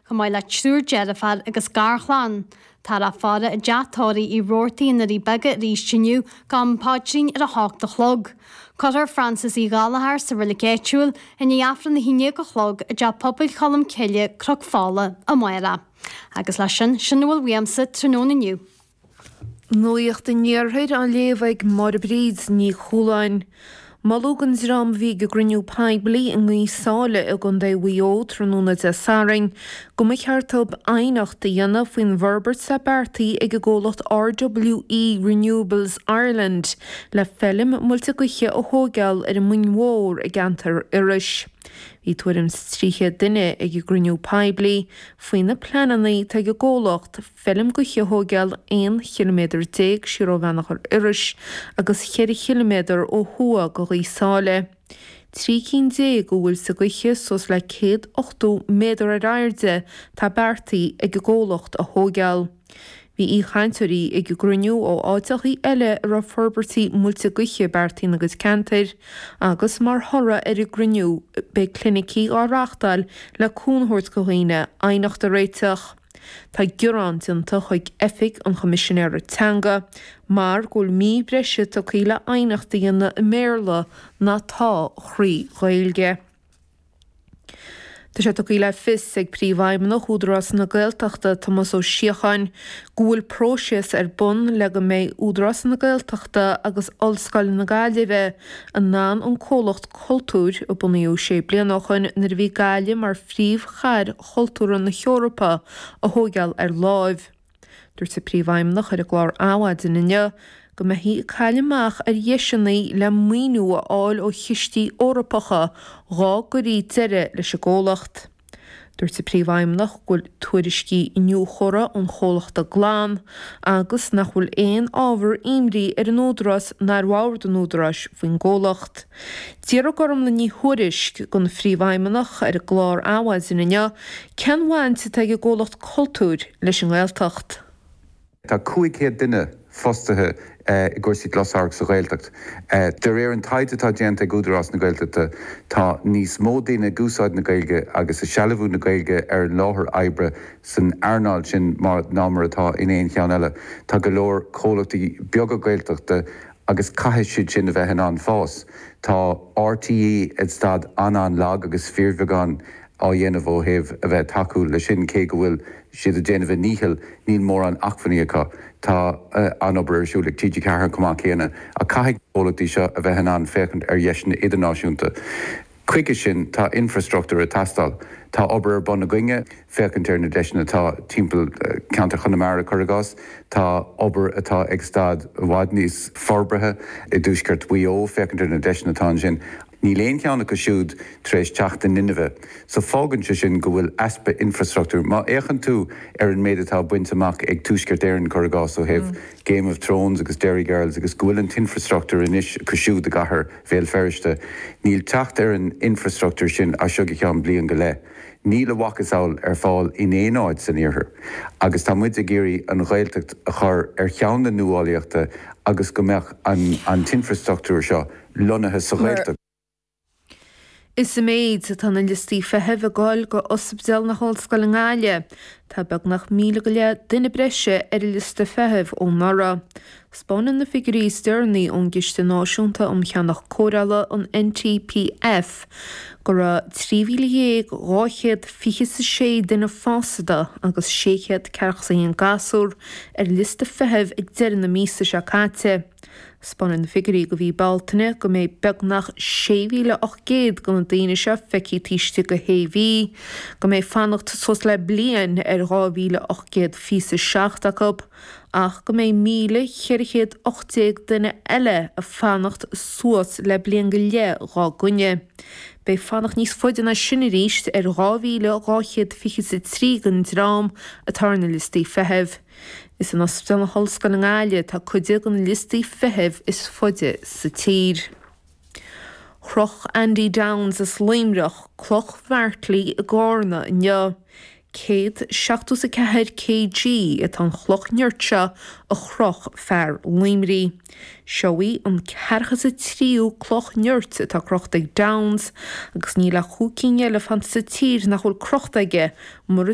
Chomh maith le triúr deirfiúr agus garchlann, tá an fhaire i dTeach Tórraimh Roarty i nDoirí Beaga arís inniu go ham paidrín ar a hocht a chlog. Cuirfear Francis Uí Ghallchóir sa roilig áitiúil i ndiaidh Aifreann na hAoine ag dó a chlog i dTeach Pobail Cholm Cille, Cnoc Fola, amárach. Agus leis sin, sin a bhfuil uaimse tráthnóna inniu. Nuacht an Iarthair á léamh ag Máire Bríd Ní Chualáin. Moladh don dream a bhí ag an gcruinniú poiblí i nGaoth Sáile i gContae Mhaigh Eo tráthnóna Dé Sathairn go mba cheart dóibh aighneacht a dhéanamh faoin bhforbairt atá beartaithe ag an gcomhlacht RWE Renewables Ireland le feilm muilte gaoithe a thóigeáil ar an Muing Mhór i gceantar Iorrais. Bhí tuairim 's 300 duine ag an gcruinniú poiblí faoi na pleananna atá ag an gcomhlacht. feilm ghaoithe a thóigeáil, 11 chiliméadar siar ó Bheannchar Iorrais agus ceithre chiliméadar ó thuaidh go Ghaoth Sáile. Trí cinn déag de mhuilte gaoithe, suas le céad ochtó méadar ar airde, atá beartaithe ag an gcomhlacht a thóigeáil. Bhí aoichainteoirí ag an gcruinniú ó áiteachaí eile a raibh forbairtí muilte gaoithe beartaithe ina gcuid ceantair agus mar thoradh ar an gcruinniú beidh clinicí á reachtáil le cúnamh a thabhairt go dhaoine aighneacht a réiteach. Tá gearán déanta chuig Oifig an Choimisinéara Teanga mar go bhfuil mí breise tugtha le aighneacht a dhéanamh i mBéarla ná atá thrí Ghaeilge. Tá sé tugtha le fios ag Príomhfheidhmeannach Údarás na Gaeltachta, Tomás Ó Síocháin, go bhfuil próiseas ar bun le go mbeidh Údarás na Gaeltachta agus Ollscoil na Gaillimhe in ann an comhlacht cultúir a bunaíodh sé bliana ó shin nuair a bhí Gaillimh mar phríomhchathair chultúrtha na hEorpa a thóigeáil ar láimh. Dúirt an Príomhfheidhmeannach ar an gclár Adhmhaidin inniu go mbeifí ag cailleadh amach ar dheiseanna le maoiniú a fháil ó chistí Eorpacha dhá gcuirí deireadh leis an gcomhlacht. Dúirt an Príomhfheidhmeannach go bhfuil tuairiscí iniúchóra ón gcomhlacht glan agus nach bhfuil aon ábhar imní ar an Údarás ná ar bhord an Údaráis faoin gcomhlacht. D'fhiafraigh Gormlaith Ní Thuairisg, den Phríomhfheidhmeannach, ar an gclár Adhmhaidin inniu cén bhaint atá ag an gComhlacht Cultúir leis an nGaeltacht. Tá 500 duine fostaithe i gcúrsaí closamhairc sa Ghaeltacht. De réir an taighde atá déanta ag Údarás na Gaeltachta, tá níos mó daoine ag úsáid na Gaeilge agus ag sealbhú na Gaeilge ar an láthair oibre san earnáil sin ná mar atá in aon cheann eile. Tá go leor comhlachtaí beaga Gaeltachta Agus caithfidh siad sin a bheith in ann fás. Tá RTÉ i staid an-an-lag agus fíorbheagán á dhéanamh ó thaobh a bheith ag tacú leis sin, cé go bhfuil siad ag déanamh a ndícheall, níl mórán acmhainní acu. Tá an-obair ar siúl ag TG4 chomh maith céanna, ach caithfidh na comhlachtaí seo a bheith in ann féachaint ar dheiseanna idirnáisiúnta. Chuige sin tá infreastruchtúr ag teastáil. Tá obair ar bun againne féachaint ar na deiseanna atá timpeall ceantar Chonamara, cuir i gcás. Tá obair atá ag staid i bhfad níos forbartha i dtuaisceart Mhaigh Eo féachaint ar na deiseanna atá ansin. Níl aon cheann acu siúd tar éis teacht in inmhe. So fágann sé sin go bhfuil easpa infreastruchtúir. Má fhéachann tú ar an méid atá bainte amach ag Tuaisceart Éireann, cuir i gcás, ó thaobh Game of Thrones agus Derry Girls agus go bhfuil an t-infreastruchtúr anois acu siúd i gcathair Bhéal Feirste. Níl teacht ar an infreastruchtúr sin as seo go ceann bliain go leith. Níl a mhacasamhail ar fáil in aon áit san Iarthar. Agus tá muid ag iarraidh an Ghaeltacht a chur ar cheann na nuálaíochta agus go mbeadh an t-infreastruchtúr seo lonnaithe sa Ghaeltacht. Is ag méadú atá na liostaí feithimh i gcomhair Ospidéal na hOllscoile i nGaillimh. Tá beagnach míle go leith duine breise ar an liosta feithimh ó anuraidh. Spáineann na figiúirí is deireanaí ón gCiste Náisiúnta um Cheannach Cóireála, an NTPF, go raibh 13,226 duine fásta agus 641 gasúr ar liosta feithimh ag deireadh na míosa seo caite. Spáineann na figiúirí go mhí Bealtaine go mbeidh beagnach 6,800 de na daoine seo feicthe taobh istigh de shé mhí, go mbeidh fanacht suas le bliain ar 2,827 acu, ach go mbeidh 1,418 duine eile ag fanacht suas le bliain go leith dhá gcoinne. Beidh fanacht níos faide ná sin arís ar 2,223 den dream atá ar na liostaí feithimh. Is in Ospidéal na hOllscoile i nGaillimh atá cuid de na liostaí feithimh is faide sa tír. Chroch Andy Downes as Luimneach cloch Mhairtín i gCárna inniu. Céad seachtó is a ceathair kg atá an chloch nirt seo a chroch fear Luimní. Seo í an ceathrachadú is a tríú cloch nirt atá crochta ag Downes agus níl ach cúig cinn eile fanta sa tír nach bhfuil crochta aige mura